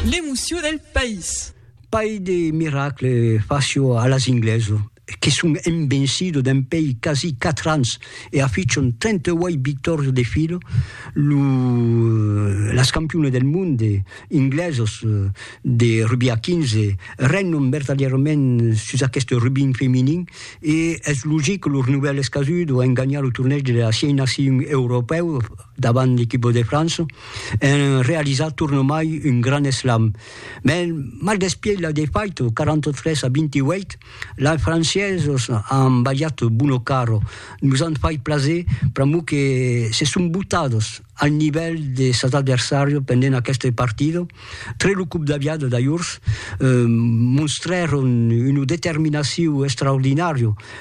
L'emoció del país. Pair de miracle facio a las ingleso que son envencido dempei quasi quatre ans e afichon 38 victòrios de filo lo las campione del monde inglesos de rugbi a 15 regnon vertadièrament sus aqueste rugbin feminin e es logic que los novèls casud an ganhat lo torneg de las siei nacion europèu davant l'equipo de França, en realizar tornomai un grand slam. Mès mal despièit la defaita, 43 a 28, lai franciesos an balhat Buono Caro, nos an fait plaser pr'amor que se son botados al nivèl de sas adversàrios pendent aquesta partida. Tre lo còp d'aviada d'ajorns, monstrèron una determinacion extraordinària,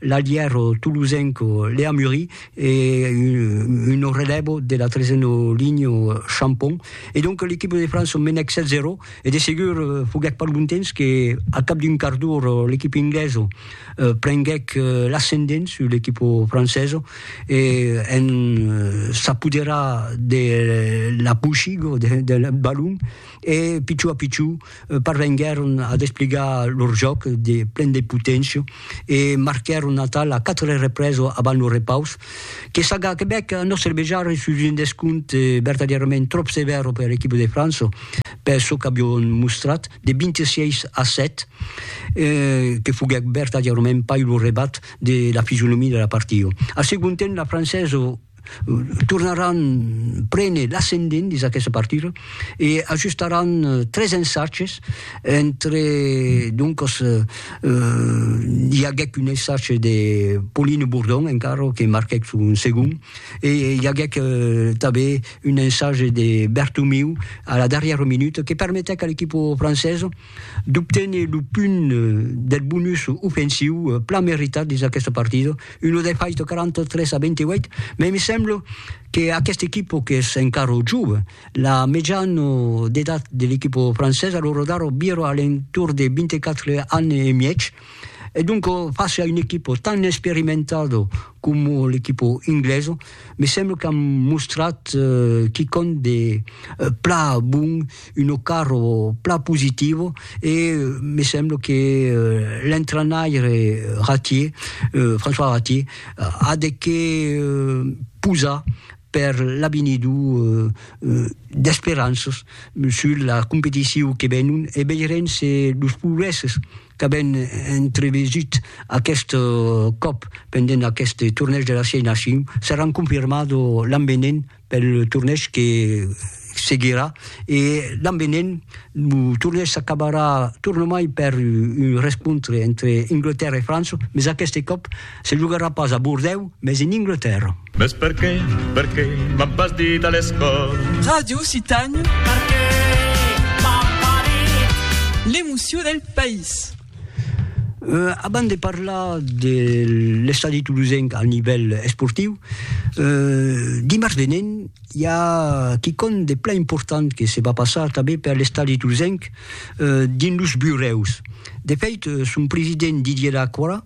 L'aliero tolosenco Lea Murri e uno relevo de la trezeno linho Champon. E donc l'equipe de França menèc 7-0 e de segur foguèc pas lontens que a cap d'un quart d'ora l'equipe inglesa prenguèc l'ascendent sus l'equipe francesa e en s'apoderar de la pochiga del balon e pichó a pichó parvenguèron a despligar lor jòc de plen de poténcia e marquèron atal la 4 represa avant lo repaus, que Saga Quebec a nòstre vejar sus un descompte vertadièrament tròp sevèr per l'equipa de França per çò qu'avián mostrat, de 26 a 7, que foguèt vertadièrament pas lo rebat de la fisionomia de la partida. Al segond temps, la Francesa tornaràn prene l'ascendent dins aquesta partida e ajustaràn tres ensatges entre doncas i aguèc un ensatge de Pauline Bourdon encara que marquèc son segond e i aguèc tanben un ensatge de Bertomeu a la darrièra minuta que permetèc a l'equipa francesa d'obténer lo punt del bonus ofensiu plan meritat dins aquesta partida, una defaita 43 a 28, mai me sembla que aquesta equipa qu'es encara jove, la mejana d'edat de l'equipa francesa, lo radar vira a l'entorn de 24 ans e mièg, E donc face a un equipo tan experimentado como l'equipo ingleso, me sembla qu'an mostrat quicòm de pla bon, un ocarro pla positivo e me sembla que l'entrainaire Ratier, François Ratier, a de qué posar per l'avinidor d'esperanças sus la competicion que venon e veirem se los progrèsses qu'avèm entrevesut aqueste còp pendent aqueste tornèish de las 6 nacions seràn confirmats l'an venent pel tornèish que seguirà e l'an venent lo torneg s'acabarà tornamai per un rescontre entre Anglatèrra e França, mes aqueste còp se jogarà pas a Bordèu, mes en Anglatèrra. Mes perqué, perqué m'an pas dit a l'escòla. Ràdio Citanha. Perqué m'an pas dit. L'emocion del país. Abans de parlar de l'estadi tolosenc al nivèl esportiu, dimars venent, I a quicòm de plan important que se va passar tanben per l'estadi d'Usenc dins los burèus. De fèit, son president Didier Lacroix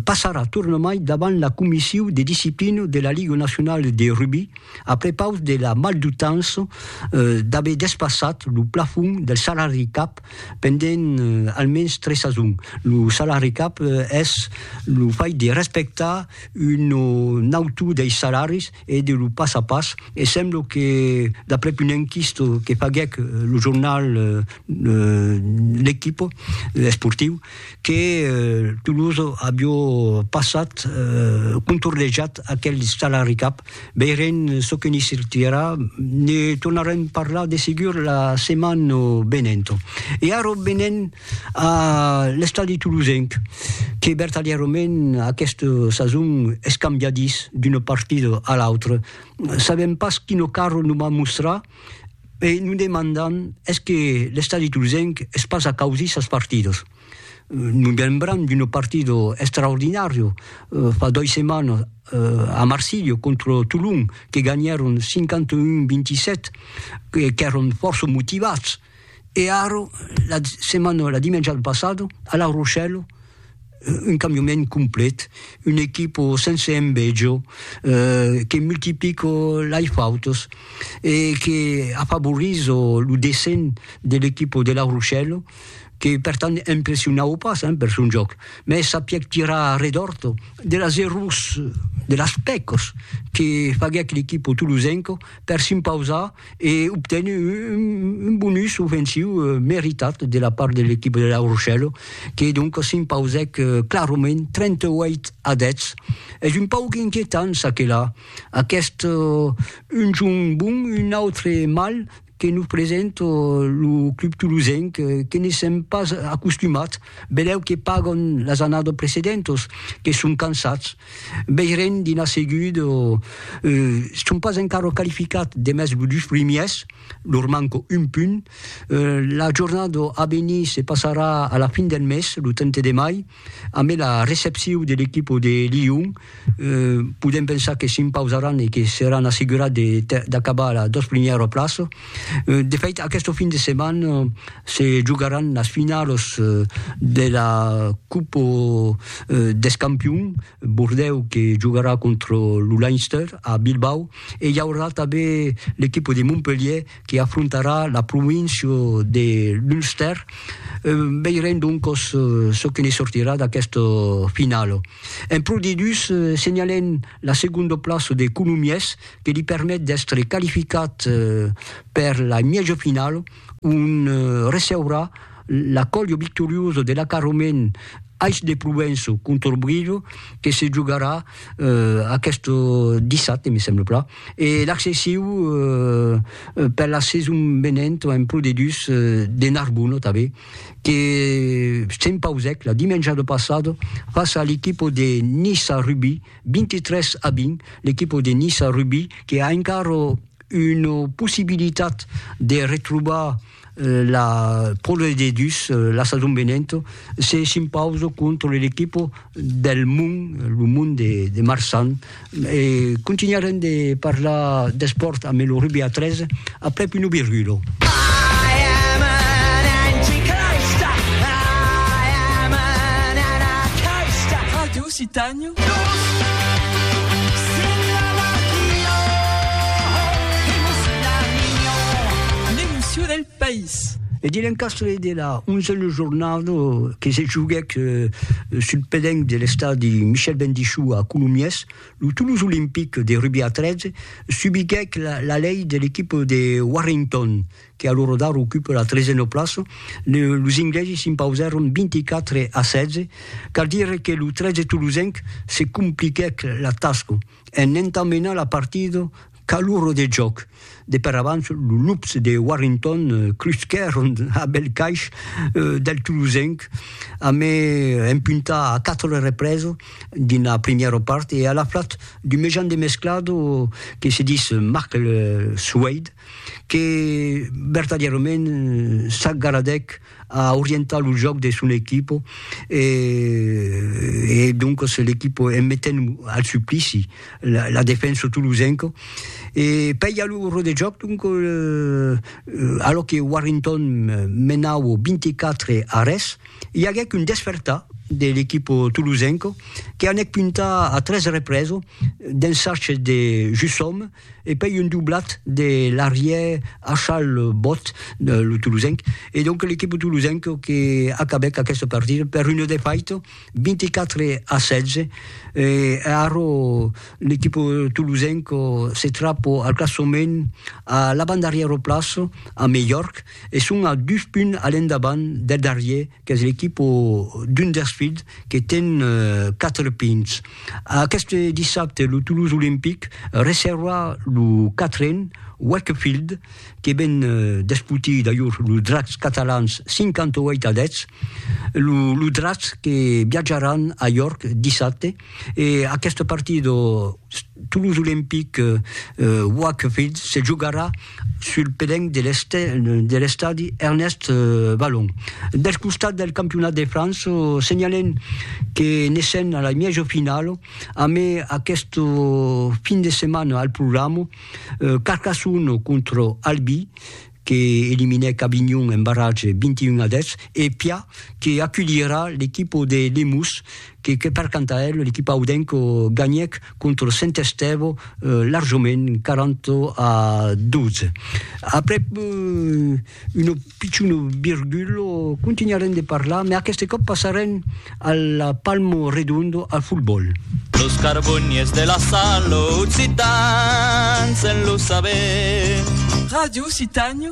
passarà tornamai davant la comissiu de disciplina de la Liga Nacionala de Rugbi a prepaus de la maldutança d'aver despassat lo plafond del salari cap pendent almens tres sasons. Lo salari cap es lo fait de respectar un autor dei salaris e de lo pas a pas e semblo que d'aprèp un enquisto que faguèc lo jornal L'Equipo esportiu que Toulouse avió passat contornejat aquel salari cap, veirem çò que n'i sortirà, ne tornarem parlar de segur la setmana venenta. E ara venèm A l'estadi tolosenc, que vertadièrament aquesta sason es cambiadís d'una partida a l'autra, sabèm pas quina cara nos va mostrar e nos demandam es que l'estadi tolosenc es pas a causir sas partidas. Nos lembram d'una partida extraordinària fa dois setmanas a Marsilha contra Tolon, que ganhèron 51-27, qu'èron fòrça motivats, E ara, la setmana, la dimènja passada, a La Rochelle, un cambiament complet, una equipa sense enveja, que multiplica lei fautas e que afavorisa lo descens de l'equipa de La Rochelle, que per tant impressionava pas per son jòc, mès sapièc tirar a redòrt de las errors, de las pècas que faguèc l'equipa tolosenca per s'impausar e obten un bonus ofensiu meritat de la part de l'equipa de La Rochelle, que donc s'impausèc clarament 38 a 10. Es un pauc inquietant ça que là, aquest un jorn bon, un autre mal que nos presenta lo club tolosenc que ne sèm pas acostumats, belèu que pagan las annadas precedentas, que son cansats, Veiren d'ina seguda, e son pas encara qualificats demest dus primièrs, lor manca un punt. La jornada a venir se passarà a la fin del mes, lo 30 de mai, ambe la recepcion de l'equipa de Lyon. Podèm pensar que s'impausaràn e que seràn assegurats d'acabar a las dos primièras plaças. De fait, aqueste fin de setmana se jogaràn las finalas de la Copa dels Campions, Bordèu que jogarà contra lo Leinster a Bilbao e i aurà tanben l'equipa de Montpelhièr que afrontarà la província de l'Ulster. Veirem doncas çò que ne sortirà d'aquesta finala. En Pro D2 senhalèm la segonda plaça de Colomiers que li permet d'èstre qualificat per la mièja final ont receurà l'Accòlio victorioso de l'acarrament Ais de Provenço contra Brido que se jogarà aquest dissabte, me semble plan, e l'accessiu per la sason venenta en Pro D2 de Narbona tanben que s'empausèc la dimenjada passada fàcia l'equipa de Nissa Rugby, 23 a 20, l'equipa de Niça Rugbi que a encara una possibilitat de retrobar la Pròle de Dus la sason venenta se s'impausa contra l'equipa del Mon, lo Mon de, de Marsan. E continuarem de parlar d'espòrt amb lo rugbi a 3 aprèp una virgula. L'emoció del país. E de l'encastre de la 11a jornada que se joguèc sul pedenc de l'estadi Michel Bendichou a Colomiers, lo Toulouse Olympique de rugbi a 13 subiguèc la lei de l'equipa de Warrington, que a lo rodar ocupe la tresena plaça, los inglesi s'impausèron 24 a 16, cal dire que lo 13 tolosenc se compliquèc la tasca en entamenar la partida qu'a l'ora de jòc. De per abans, los lups de Warrington crusquèron a bèl caish del tolosenc a me empuntar a 4 represa dins la primièra part e a la flat d'un mejan demesclado que se dis Marc Soueyd que vertadièrament s'agaradèc a orientar lo jòc de son equipo e e doncas l'equipo en metent al suplici la la defensa tolosenca e pei a l'ora de jòc donc alò que Warrington menava 24 a res i aguèc un despertar de l'equipo tolosenca que anèc puntar a tres represa d'un sachet de Jusòme e pei un doblat de l'arrièr Achal Bot, lo tolosenc, e donc l'equip tolosenc que acabèc aquesta partida per un defaut 24 a 16, e ara l'equip tolosenc se trap al classament a l'avantdarrièra plaça, a melhor, e son a dus punts a l'endavant del darrièr qu'es l'equipa d'un dels filhs que ten quatre pinhs. Aqueste dissabte lo Toulouse Olympic recebra lo quatren Wakefield que ven d'esputir d'ajor los Dracs catalans 58 a 10. Los Dracs que viatjaràn a York dissabte E aqueste partit o Toulouse Olympique Wakefield se jogarà sul pedenc de l'estadi Ernest Vallon. Del costat del campionat de França, senhalem que ne sèn a la mièja finala amé aqueste fin de setmana al programa Carcassonne contra Albi que eliminèc Avignon en barratge 21 a 10, e Pia que aculhirà l'equipa de Lemús que que per canta el, l'equipa audenca ganhèc contra Saint Estève larjament 40 a 12. Aprèp una pichona virgula, continuarem de parlar, mès aqueste còp passarem A la Palmo Redondo al football. Los carboniers de la Salo Occitans en lo saber. Radio Occitània.